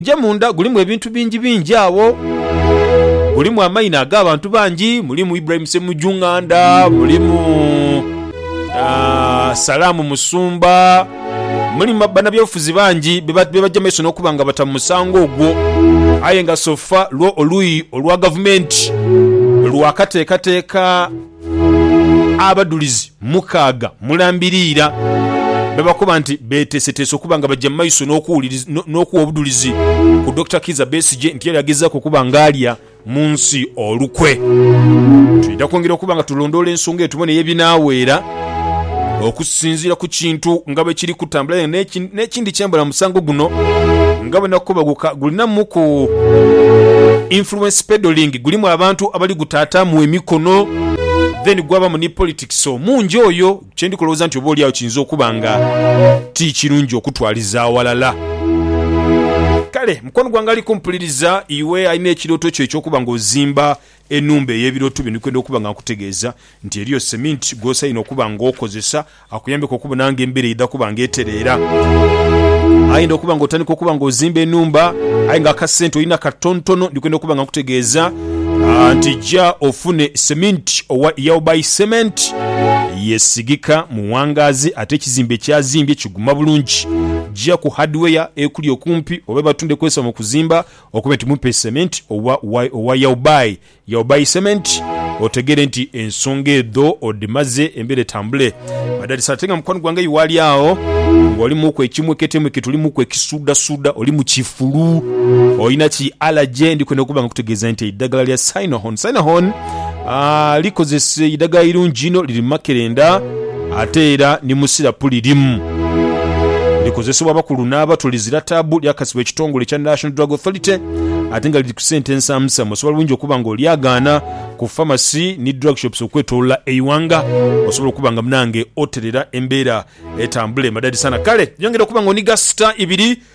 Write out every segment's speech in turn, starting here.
Gye munda gulimu ebintu bingi bingi agho. Gulimu amaina ag'abantu bangi, mulimu Ibrahim Ssemujju Nganda, mulimu Salaam Musumba, mulimu banabyabufuzi bangi be baja mu maiso n'okuba nga bata mu musango ogwo. Aye nga sofa lwo oluuyi olwa gavumenti lwakateekateeka Abadhulizi mukaaga mulambiriira bebakoba nti beteeseteese okuba nga baja mu maiso n'okuwa obudhulizi ku Dokita Kiiza Besigye nti era agezaaku okuba nga alya mu nsi olukwe. Twidha kwongera okuba nga tulondoola ensonga eyo tubone ye binaaweera. Okusinziira ku kintu nga bwe kiri kutambula aye n'ekindi kyembala mu musango guno nga bwe nakubaguka gulinamuku influence peddling, gulimu abantu abali gutaataamu emikono then gwabamu ni politics omungi oyo kye ndi kulowooza nti oba oli agho kiyinza okuba nga ti kirungi okutwaliza awalala. Kale mukwano gwange ali kumpuliriza iwe alina ekirooto kyo eky'okuba ng'ozimba Enhumba ey'ebirooto byo ni kwenda okuba nga nkutegeeza nti eriyo seminti gw'osainhe okuba nga okozesa akuyambeku okubona nga embeera eidha kuba nga etereera. Aidha okuba nga otandika okuba nga ozimba enhumba aye nga akasente olina katontono, ndi kwenda okuba nga nkutegeeza nti ja ofune seminti owa Yaobai Cement. Yeesigika mu wangaazi ate ekizimbe ky'azimbye kiguma bulungi. Ja ku Hardware ekuli okumpi oba ebatundhe ekozesebwa mu kuzimba Okube nti mumpe cement oba owa yawubayi yawubayi cement otegere nti ensonga edho odhimaze embera etambule madadisi ate nga mukwano gwange eyo waali agho nga oli muku ekimwekete mwekete oli muku ekisuuda suuda oli mukifulu olina ki allergy ndhikwenda okuba nga nkutegeeza nti eidhagala lya synahon synahon likozesa eidhagala irungi inho, liri mu makerenda ate era ni mu sirapu lirimu. Likozesebwa abakulu n'abato, lizira taabu, lyakasibwa ekitongole ekya National Drug Authority ate nga liri ku sente nsamusamu. Osobola bulungi okuba nga olyagaana ku famasi ni drug shops okwetolola eighanga osobola okuba nga munange oterera embeera etambule madadisaana. Kale yongera okuba nga oniga sita ibiri.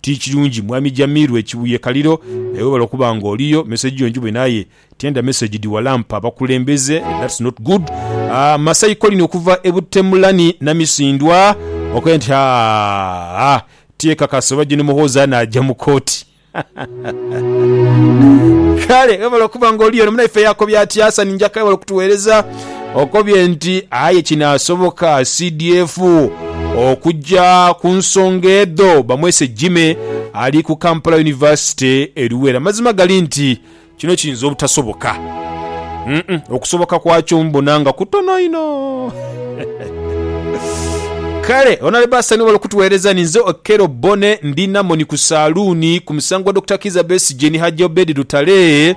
Ti kirungi mwami Jamiru e Kibuye Kaliro naye webale okuba nga oliyo. Message yo njibone aye tiyandha message dhiwalampa bakulembeze that's not good. Masai Colin okuva e Buttemulani Namisindwa okoye nti haa tyekakasa oba Gen Muhoozi anaaja mu kooti. Kale webale okuba nga oliyo. Ono munaife yakobye atya? Hassan Njaka webale kutuwereza. okobye nti aye kinaasoboka CDF okugya ku nsonga edho bamwese Jimmy ali ku Kampala University e Luweero. Amazima gali nti kino kiyinza obutasoboka. Mm-mm, okusoboka kwakyo mbona nga kutono inho. Kale onale basa ni wali kutuweereza ni nze Okello Bonne ndi Namoni ku saaluuni ku musango gwa Dokita Kizza Besigye ni Hajji Obed Lutale.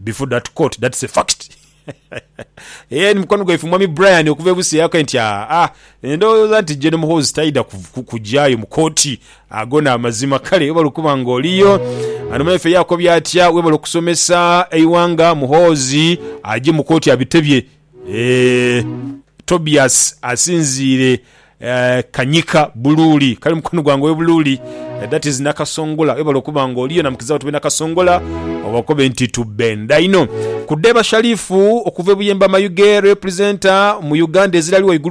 Before that court that's a fact Eeh ni mukwano gwaife mwami Brian okuva e Busia yakae nti aa ndhowooza nti Gen Muhoozi taidha kugyayo mu kooti agone amazima kale webale okuba nga oliyo Ano mwaife yakobye atya webale okusomesa eighanga Muhoozi agye mu kooti abitebye Eeh Tobias asinziire Kanyika Buluuli kali mukono gwange owe Buluuli that is Nakasongola webale okuba nga oliyo namukizawo tube Nakasongola obakobe nti tubenda inho. Ku Dheeba Shalifu okuva e Buyemba Mayuge representer mu Uganda ezirali waigulu.